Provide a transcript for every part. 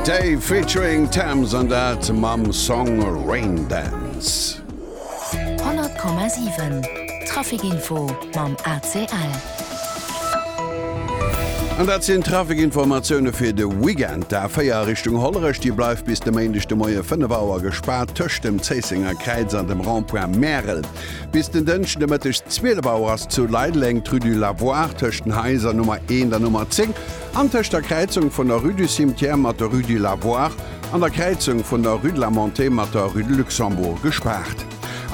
Dave featuring Tems an dat mam Song Raindance. 100,7 Traficinfo mam ACL. An dat sinn d'Traficinformatioune fir de Weekend. D'A4 a Richtung Hollerech, déi bleift bis de Méindeg de Moie 5 Auer gespaart tëscht dem Zéissenger Kräiz an dem Rond-point Märel. Bis den Dënschden de Mëtteg 12 Auer ass zu Leideleng d'Rue du Lavoir tëscht den Haiser Nummer 1 an Nummer 10 An tëscht der Kräizung vun der Rue du Cimetière mat der Rue du Lavoir an der Kräizung vun der Rue de la Montée mat der Rue de Luxembourg gespaart.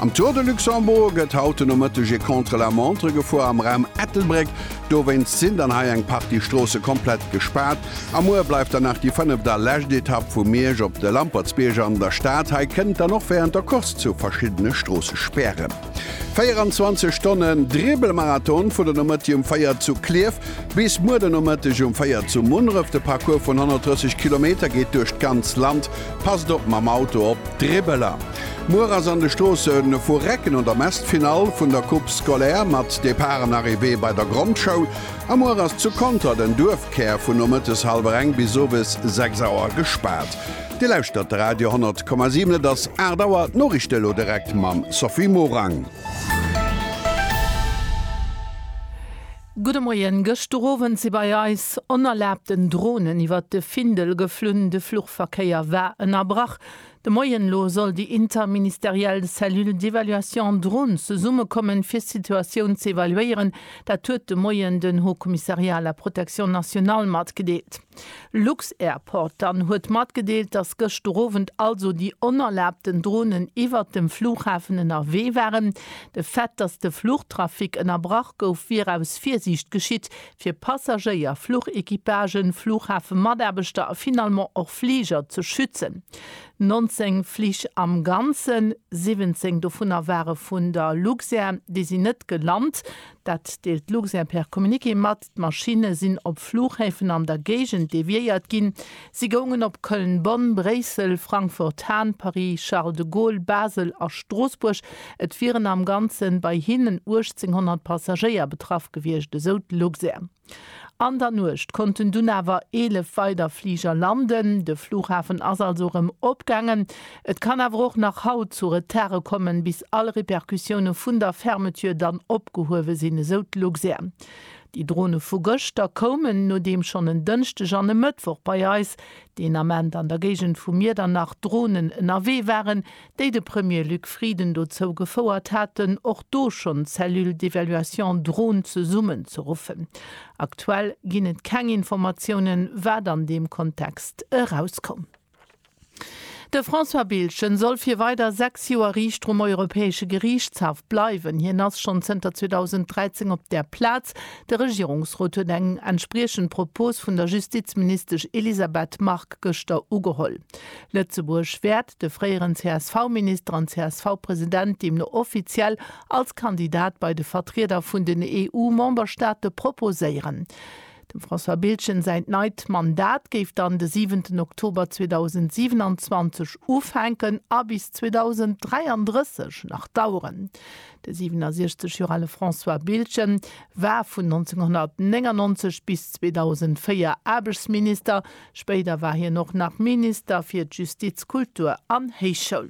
Am Tour de Luxembourg gëtt haut den Nomëtteg e Contre-la-montre gefuer am Raum Ettelbréck. Dowéinst sinn dann hei eng Partie Stroosse komplett gespaart. A muer bleift dann nach déi fënneft a lescht Etapp vu Miersch op de Lampertsbierg an der Stad. Hei kënnt dann och wärend der Course zu verschiddene Stroossespären. 24 Stonnen Dribbelmarathon, vun der Nomëtti um 4 zu Clierf bis muer den Nomëtteg um 4 zu Munneref. De Parcours vun 130 Kilometer geet duerch d'ganz Land. Passt op mam Auto op d'Dribbeler. Muer ass an de Stroosse vu Recken an der Mess d'Finall vun der Coupe scolaire mat Depart an Arrivée bei der Grondschoul. A muer ass zu Conter den Duerfkär vun nomëttes hallwer eng bis owes 6 Auer gespaart. Dir lauschtert de Radio 10,7. Et ass 8 Auer. D'Noriichte elo direkt mam Sophie Morang. Gudde Moien. Gëschter Owend si bei eis onerlaabten Dronen iwwert de Findel geflunn. De Fluchverkéier war ënnerbrach. De Moien elo soll déi interministeriell Cellule d'évaluation drones zesummekommen, fir d'Situatioun ze evaluéieren. Dat huet de Moien den Haut Commissariat à la protection nationale matgedeelt. Lux-Airport dann huet matgedeelt, dass gëschter Owend also déi onerlaabten Dronen iwwert dem Flughafen ënnerwee waren. De Fait, dass de Fluchtrafic ënnerbrach gouf, wier aus Virsiicht geschitt, fir Passagéier, Fluchequipagen, Flughafemataarbechter a finalement och Fliger ze schützen. 19 Flich am Ganzen, 17 dovunner ware vun der Luxair, déi sinn net gelant. Dat deelt d'Luxair per Communiqué mat. D'Maschinne sinn op Flughäfen an der Géigend deviéiert ginn. Si goungen op Köln-Bonn, Bréissel, Frankfurt-Hahn, Paris-Charles de Gaulle, Basel a Stroossbuerg. Et wieren am Ganze bei hinnen 1.800 Passagéier betraff gewiescht, esou d'Luxair. An der Nuecht konnten dunn awer 11 weider Fliger landen. De Flughafen ass also erëm opgaangen. Et kann awer och nach haut zu Retardë kommen, bis all Repercussioune vun der Fermeture dann opgehuewe sinn, esou d'Luxair. Déi Drone vu gëschter koumen, nodeem schonn en Dënschdeg an e Mëttwoch bei eis, deen Ament an der Géigend vu Miedernach, Dronen ënnerwee waren, déi de Premier Luc Frieden dozou gefouert haten, och do schonn d'Cellule d'évaluation drone zesummen ze ruffen. Aktuell ginn et keng Informatiounen, wat an deem Kontext erauskoum. De François Biltgen soll fir weider 6 Joer Riichter um Europäesche Geriichtshaff bleiwen. Hien ass schonn zënter 2013 op där Plaz. De Regierungsrot huet eng entspriechend Propos vun der Justizministesch Elisabeth Margue gëschter ugeholl. Lëtzebuerg wäert de fréieren CSV-Minister an CSV-President deemno offiziell als Kandidat bei de Vertrieder vun den EU-Memberstaate proposéieren. Dem François Biltgen säint neit Mandat géif dann de siwenten Oktober 2027 ufänken a bis 2033 nach daueren. De 67 Joer ale François Biltgen war vun 1999 bis 2004 Aarbechtsminister. Spéider war hien och nach Minister fir d'Justiz, Kultur an Héichschoul.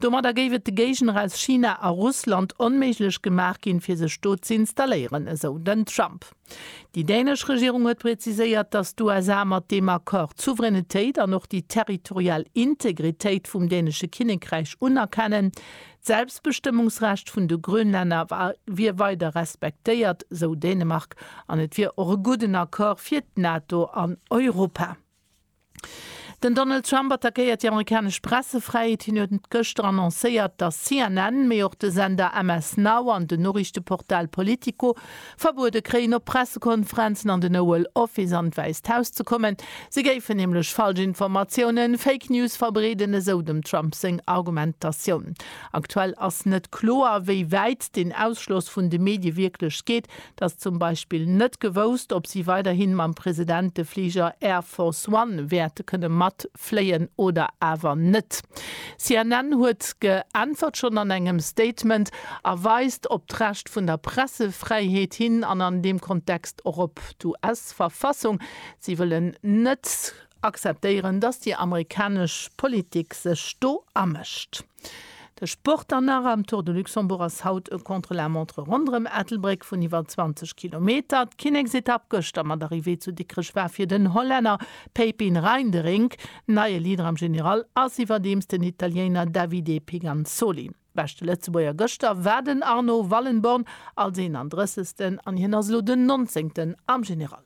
Domadder géif et de Géigner aus China a Russland onméiglech gemaach ginn, fir sech do ze installéieren, esou den Trump. Déi dänesch Regierung huet präziséiert, datt d'USA mat deem Accord d'Souveränitéit an och déi territorial Integritéit vum dänesche Kinnekräich unerkennen. D'Selbstbestëmmungsrecht vun de Grönlänner wier weider respektéiert, esou Dänemark, an et wier och e gudden Accord fir d'NATO an Europa. Den Donald Trump attackéiert déi amerikanesch Pressefräiheet. Hien huet gëschter annoncéiert, datt CNN, mee och de Sender MS Now an den Noriichteportal Politico verbuede kréien, op Pressekonferenzen an den Oval Office an d'Wäisst Haus ze kommen. Si géifen nämlech Falschinformatiounen, Fake News, verbreeden, esou dem Trump seng Argumentatioun. Aktuell ass net kloer, wéi wäit den Ausschloss vun de Medie wierklech geet, Et ass zum Beispill net gewousst, ob si weiderhi mam President de Fliger Air Force One wäerte kënne matfléien oder awer net. CNN huet geäntwert, schonn an engem Statement, a weist op d'Recht vun der Pressefräiheet hin an an deem Kontext och op d'US-Verfassung. Si wëllen net akzeptéieren, datt déi amerikanesch Politik sech do amëscht. De Sport dann nach, Am Tour de Luxembourg ass haut e Contre-la-montre ronderëm Ettelbréck vun iwwer 20 Kilometer. D'Kinneksetapp gëschter mat Arrivée zu Dikrech war fir den Hollänner Pepijn Reinderink neie Leader. Am General ass iwwerdeems den Italiéiner Davide Piganzoli beschte Lëtzebuerger. Gëschter war den Arno Wallenborn als 31. an hien ass elo den 19. am General.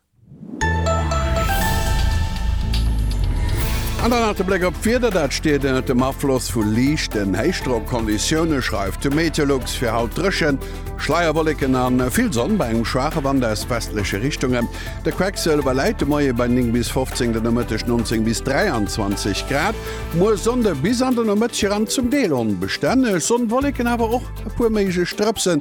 An dann nach de Bléck op d'Wieder. Dat steet ënnert dem Afloss vu liichten Héichdrockkonditioune, schreift de Meteolux. Fir haut dréchen, Schleierwolleken a vill Sonn bei engem schwaache Wand aus westleche Richtungen. De Quecksilwer läit de Moie bei 9 bis 15, den Nomëtteg 19 bis 23 Grad. Muer Sonnde, bis an den Nomëtteg eran zum Deel onbestänneg Sonn, Wolleken, awer och e puer méiglech Drëpsen.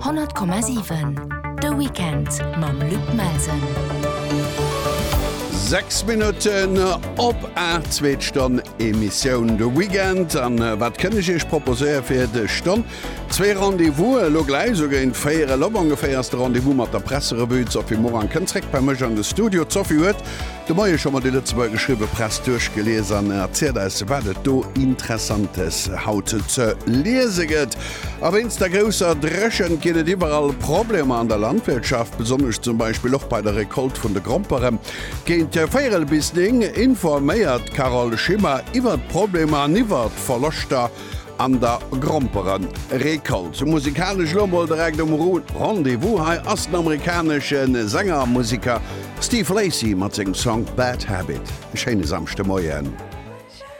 100,7 De Weekend mam Luc Melsen. 6 Minutten op a zweet Stonn Emissioun de Weekend an äh, wat kënne ich eich proposéier fir de Stonn? Zwee Rendevous äh, lo gläich so géint féiere Lobongeféiers de Rendevous mat der Presserevue. D'Sophie Morang kënnt zréck bei mech an de Studio. D'Sophie huet De Moie scho mat de Lëtzebuerger geschriwwe Press duerchgelies an erzielt eis wat et do Interessantes haut ze liese gëtt. A wéinst der grousser Dréchent ginn et iwwerall Problemer an der Landwirtschaft, besonnesch zum Beispill och bei der Recolte vun de Grompere. Géint véierel bis 9 informéiert d'Carole Schimmer iwwert d'Problemer an iwwert d'Verloschter An der Gromperen Récolte musikalesch lo mol direkt um Rendez-vous. Hei ass den amerikanesche Sänger a Musiker Steve Lacy mat sengem Song Bad Habit. E schéine Samschdemoien.